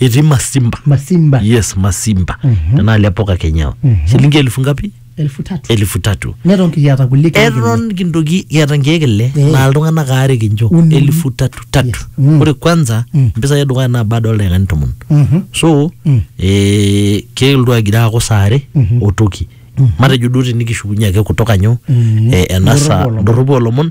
etii masimba masimba yes masimba Mhm. tenaa le poka kenyao Mhm. shilingi elfu ngapi elfu tatu elfu tatu neton kiata kulie keek ile. eton kintoki kiata nkeek ile Eh. naa iltung'anak aare kincho Uni. elfu tatu tatu Yes. Mm. ore kwanza Mm. mpisai edukuya naa baada oldaikani tomon Mhm. so Mm. eh, keeltu agira aaku saa are Mhm. otoki matejo duo tinikishukunye ake kutoka nyo Mhm. eh, ena saa Ndorropu olomon. ndorropu olomon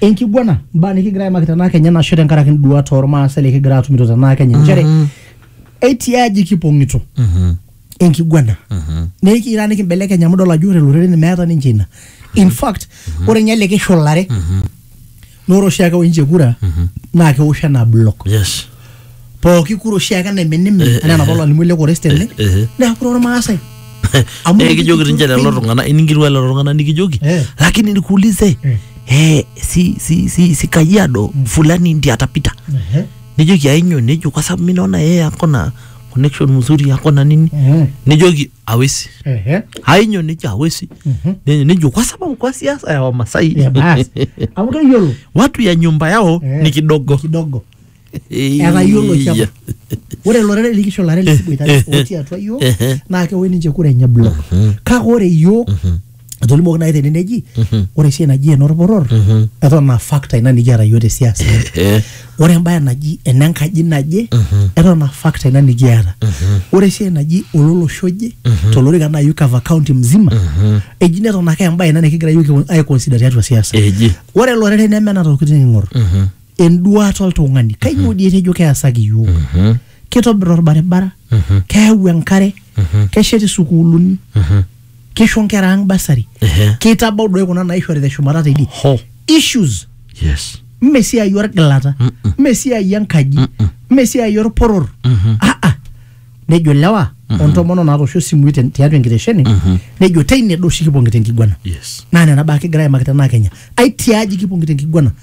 enkiguana mbaa nikigira aimaki tenaa kenya nasho tenkaraki nduat ormaasai likigira atumito tenaa kenya nchere etii aji kipong'ito enkiguana nikira nikimbelekeny amu idol ajo ore loreren meeta ninche ina in fact ore ninye likishulare naa ore oshiake oinche kura naa kewosh enaa block yes pooki kura oshiake enaiminimin Eh, anaa enapa eh, olalimu ele kores tene eh, eh. neeku kura ormaasai Amu Eh, ekijoki ninche lelo penyo. tung'anak iningirua lelo tung'anak nikijoki Eh. lakini nikuulize Eh. eh, si, si, si, si kajiado fulani ndi atapita Ehe. nijoki ainyo nejo kwa sababu mi naona yeye akona connection mzuri akona nini Mhm. nijoki awesi Ehe. ainyo nejo awesi Mhm. Nejo- nejo kwa sababu kwa siasa ya wamasai Ya basi. amu keyiolo watu ya nyumba yao Eh. ni kidogo kidogo etayiolo oshi apa ore lorere likisho lare lisiboitare otii atua yiok naa kewoy ninche kura enye block kake ore yiok etolimuoki naaji tene neji ore esiai naji enorporor eton aa factor ina nikiata yiok te siasa ore embaye naji enenkaji naje eton aa factor ina nikiata ore esiai naji ololosho oje tolorika naaji cover county mzima eji neton ake embaye ina nikigira yiok ai consider tiatua siasa Eji. ore lorere neme nena tokitin ing'or enduata oltung'ani kainyoo dii etejo keasaki iyiook Mhm. kitobir orbaribara Mhm. keyau enkare Mhm. keshet isukuuluni Mhm. kisho nkera ang basari Ehe. kitabau doi kuna naishori teshumata teidie Ho. issues Yes. mme esiai orgilata Mm-mm. mme esiai enkaji Mm-mm. mme esiai orporor Mhm. aa nejo lewa ontomono naatoosho isimui ten- tiatua enkitesheni Mhm. nejo teine do oshi kipong'ita enkiguana Yes. naa nena baa kigira aimaki tenaa kenya ai tiaji kipong'ita enkiguana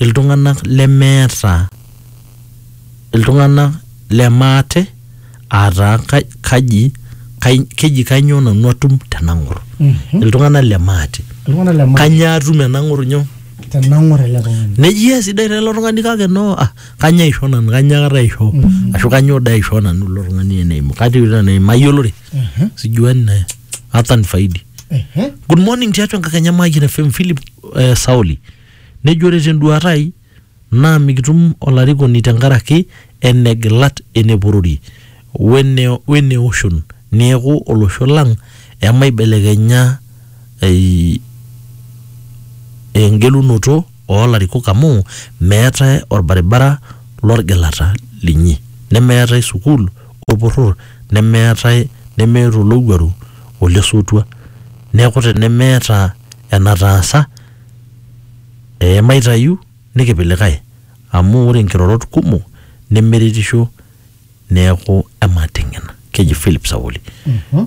iltung'ana lemeeta iltung'ana lemaate aataa ka- kaji kai- keji kanyoo nanu atum tenang'or iltung'ana lemaate iltung'ana le maa kanyoo atum enang'or nyoo tenang'or ele tung'ani nejia esidai taa ilo tung'ani kake no ah, kanyoo aisho nanu kanyoo akata aisho ashu kanyoo dai aisho nanu ilo tung'ani eneimu katii ilo eneimu mayiolore Ehe, sijuani naye hata nifaidi ehe. good morning tiatua enkakenya mayian fm philip eh, sauli Nejo ore tenduaata ai naa mikitum olarikoni tenkaraki ene gilat ene porori wene oshon neeku olosho lang emaibelekenya engelunoto oo larikok amu meetae olbaribara lolgilata linyi nemeetae sukuul olporor nemeetae nemeeta olowuaru olesotua neeku tenemeeta enataasa Ee maitayu nikipik likae amu ore nkirorot kumok nemeretisho neaku emating'ina. Keji Philip Sauli.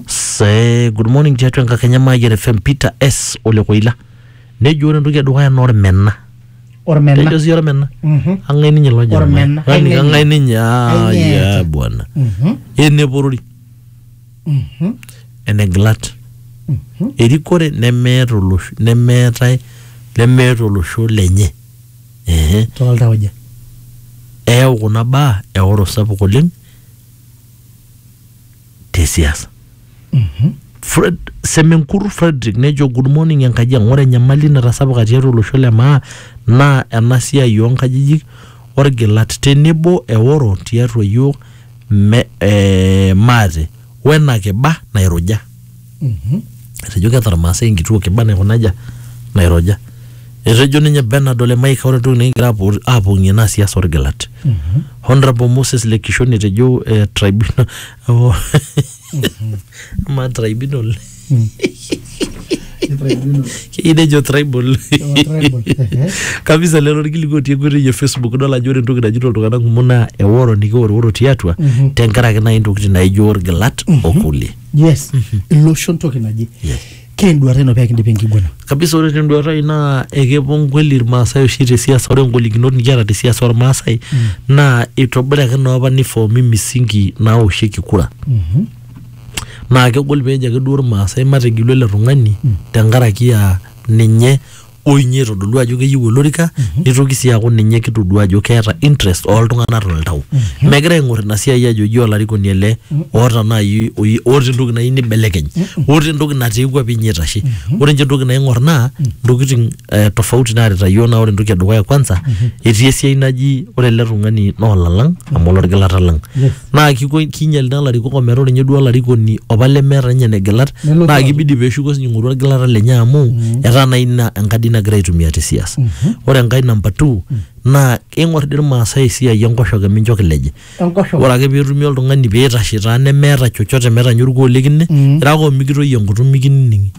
Se good morning tiatua enkakenya Mayian FM Peter S ole Koila. Nejo ore entoki edukuya naa olmena. Ormena. Kejo sii olmena. Mhm. Ang'ae ninye ilo jamaa? Olmena. Yaani Kang'ae ang'ae ninye? Ai Ah, ng'eeta. yeah, bwana. Mhm. Eneporori. enegilat erikore nemeeta olosho nemeetae lemeeta olosho lenye Ehe. toltauja eyau kuna baa eoro sapuk oleng te siasa Fred Semenkur Frederick nejo good morning enkaji ang ore enyamali natasapuka tiatua olosho le maa naa ena siai oo nkajijik orgilat tenebo eoro tiatua yiok Me, eh, maate wena kiba nairuja etejo keeta irmaasai enkituo kiba naikunaja nairuja etejo ninye Bernard ole Maika ore entoki nikigira apuo aapong'ie naa siasa orgilat Honorable Moses le Kishoni etejo eh, tribunal oh, ama tribunal keyieu nejo tribal kabisa lelo orkilikuai otii enkoitoi e facebook idol ajo ore entoki najito iltung'anak kumok naa eworo nikiworiworo tiatua tenkaraki naaji intokitin naijo orgilat okulie yes iloshon toki naje Yes. Keenduata ino pee kindip enkiguana. kabisa ore tenduata ai naa ekepuo nkweli irmaasai oshi te siasa ore ngolikinot nikiata te siasa ormaasai naa itobiraki naa apa nifoomi misingi naoshieki kura Mhm. naa kegol peejo ake duo irmaasai matigelu ele tung'ani tenkaraki aa ninye o inye etodolua ajo keyieu olorika nitoki sii aaku ninye kitodua ajo keeta interest ooltung'anak toltau megira aing'or ina siai ajo eji olarikoni ele oota naaji oyi- oota entoki nayieu nibelekeny oota entoki natiiwua pinye itashe ore inche entoki naing'or naa ntokiting eh, tofauti naarita yiok naa ore entoki edukuya kwanza etii esiai naji ore ele tung'ani naa olalang amu olorgilata lang naa kiko kinyal naa ilarikok ometaa ore ninye duo olarikoni opa lemeeta ninye negilat Nelotu naa aaku. kibidi peeshuko sinye aing'oru orgilata lenye amu etaa naa ina enkadi nagira aitumia te siasa ore enkae namba two naa ing'or dii irmaasai esiai enkoshoke mincho kileji Enkoshoke. ore ake peetumi oltung'ani peitashe taa nemeeta chochote metaa ninye orkuo likine irara ake omikitoyio enkutuk mikinining'i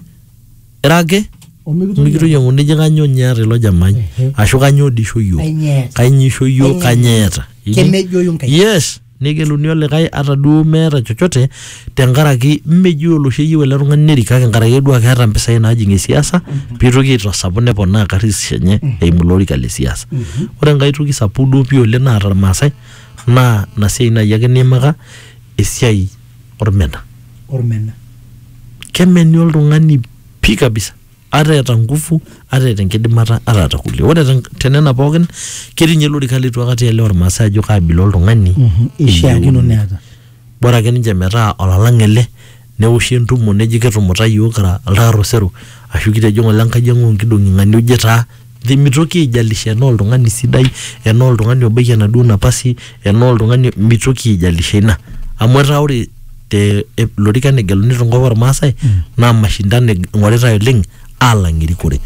ira ake omikitoki mikitoyiang'u nijo kanyoo ninye eeta ilo jamai Ehe. ashu kanyoo dii isho iyiook Kanyoo eeta? kanyoo isho iyiook kanyoo eeta Iji- kemejoyu nkai yes negeluni olikae ata duo meeta chochote tenkaraki mmeji oloshi eyieu ele tung'ani nerik kake nkaraki duo ake eeta mpisai naajing esiasa piitoki aitasapu neponaa karis enye eimu ilo orika le siasa ore enkae toki sapuk duo pii oleng naata irmaasai naa ina siai naaji ake niimaka esiai ormena ormena kemeni oltung'ani pii kabisa ata eeta nguvu ata eeta enkidimata ata eeta kulie ore ten- tenena pookin ketii ninye lorika leitu akata ielewa irmaasai ajo kaabila oltung'ani Mhm, ishiakino eyieuni. neeta bora ake ninche metaa olalang ele neoshi entumo neji kitumuta yiok kira iltaar osero ashu kitejo ng'ole enkaji ang' onkidong'i ng'ania oje taa mitoki aijalisha enaa oltung'ani sidai enaa oltung'ani obaiki enaduo napasi enaa oltung'ani mitoki aijalisha ina amu etaa ore te e- lorikan egeluni tenkop ormaasai naa mashindano eg- ing'oritae oleng alang erikore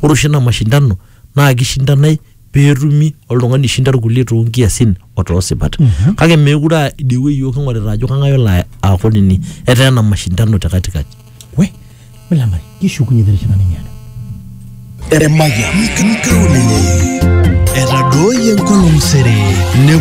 ore oshi ina mashindano naa kishindanae peetumi oltung'ani oishinda irkulie toonkiasin otoosipat kake meekure aa idie wueji yiok king'orita ajo kang'ae olo aaku nini etaa ena mashindano te katikati we milambari kishukunye terishata nimiata Emayian. Nkaulele. Etadooyie enkolong sere. Nepuo